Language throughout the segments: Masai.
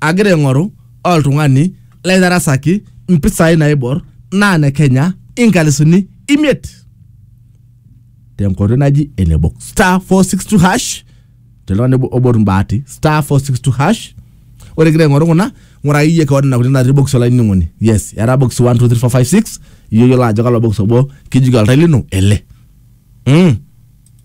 agira aing'oru oltung'ani laitarasaki mpisai naibor naa ne Kenya inkalisuni imiet tenkoitoi naji ene box star 462 hash teltung'ani obo- obot mbaati star 462 hash ore igira aing'oru kuna ng'uraki iyie kewon nena kuti natii box olainining'oni yes era box 1 2 3 4 5 6 iyiolo ajo kalo box obo kijoki oltai lino ele mm.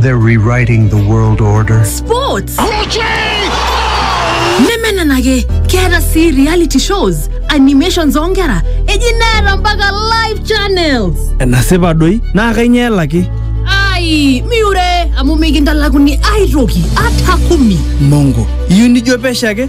They're rewriting the world order. Sports. nemenenake keeta sii reality shows animations oonkera eji neeta mpaka live channels enasipa doi naa kainyoo elaki ai miure amu mikintalakuni aitoki ata kumi mongo iyieu nijo pesho ake